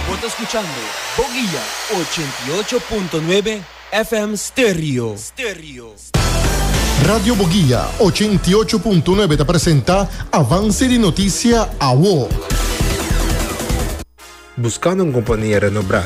Bo ta skuchando Boguia ochenta i ocho punto nuebe FM Stereo. Radio Boguia ochenta i ocho punto nuebe ta presenta Avance di Noticia, awo. Buscando un compania renobrá?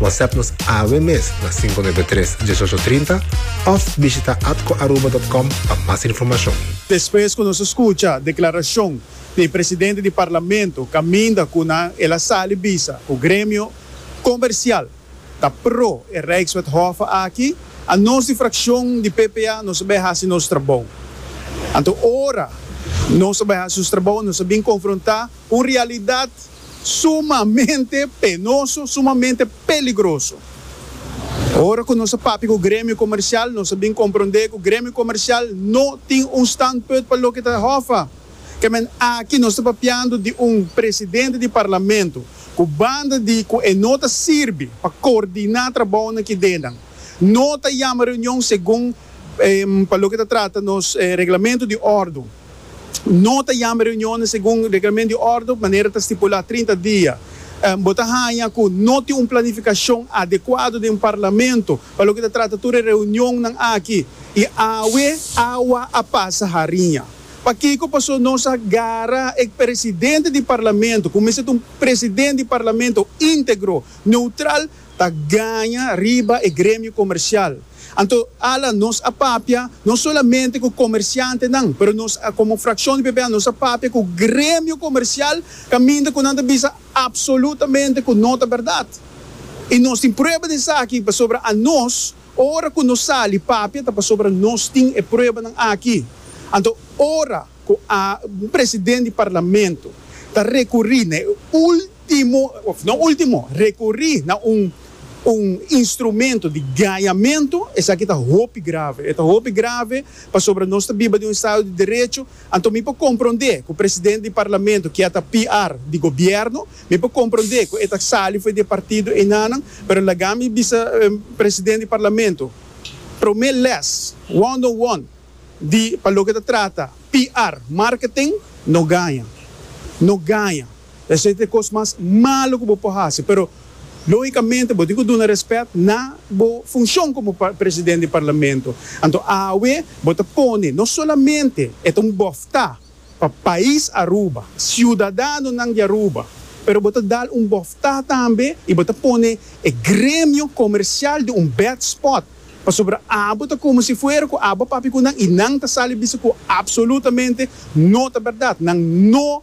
WhatsApp nos awe mes na 593 1830 of bishita atcoaruba.com pa mas informacion. Despues cu nos a scucha declaracion di presidente di Parlamento caminda cu nan el a sali bisa cu gremio comercial ta pro e Rijkswethofe aki, a nos di fraccion di PPA nos a bay haci nos trabou. Anto ora nos a bay haci nos trabou nos a bin confronta cu un realidad. Sumamente penoso, sumamente peligroso. Ora cu nos a papia cu Gremio Comercial, nos a bin compronde cu Gremio Comercial no tin un standpuit pa loke ta hofa. Ke men aki nos ta papiando di un Presidente di Parlamento cu banda di cu e no ta sirbi pa coordina trabaonan ki denan, no ta yama reunion segun Pa loke ta trata nos Reglamento di Ordu, no ta yama reunionnan segun Reglamento di Ordu manera ta stipulá trinta dia. Bo ta haña ku no tin un planifikashon adekuado den Parlamento pa loke ta trata tur e reunionnan aki i awe awa a pasa hariña. Pakiko pasó nos a gara e presidente di Parlamento, ku mester ta un presidente di Parlamento íntegro, neutral, ta gaña riba e gremio komersial. Anto ala nos a papia no solamente ku komersiantenan, pero nos komo frakshon di PPA nos a papia ku gremio komersial kaminda ku nan ta bisa apsolutamente ku no ta bèrdat. I nos tin prueba di esaki pasobra anos ora ku nos sali papia ta pasobra nos tin e pruebanan aki. Anto ora ku a presidente di parlamento ta rekurí na e. Ultimo, of no ultimo, rekorí na un un instrumento di gañamentu, esaki ta hopi grave. E ta hopi grave pasobra nos ta biba den un estado di derecho. Anto mi por komprondé ku presidente di parlamento kia ta PR di gobièrnu, mi por komprondé ku e ta sali for di e partido enanan, pero laga mi bisa presidente di parlamento promé lès, one on one, di pa loke ta trata PR, marketing, no gaña. No gaña. Esei ta e kos mas malu ku bo por hasi, pero lógikamente bo tin ku duna rèspèt na bo funshon komo presidente di parlamento. Anto awe bo ta pone no solamente e ta un bòftá pa pais Aruba, siudadanonan di Aruba, pero bo ta dal un bòftá tambe i bo ta pone e gremio komersial den un bèd spòt pasobra abo ta komo si fuera ku abo a papia ku nan i nan ta sali bisa ku apsolutamente no ta bèrdat, nan no.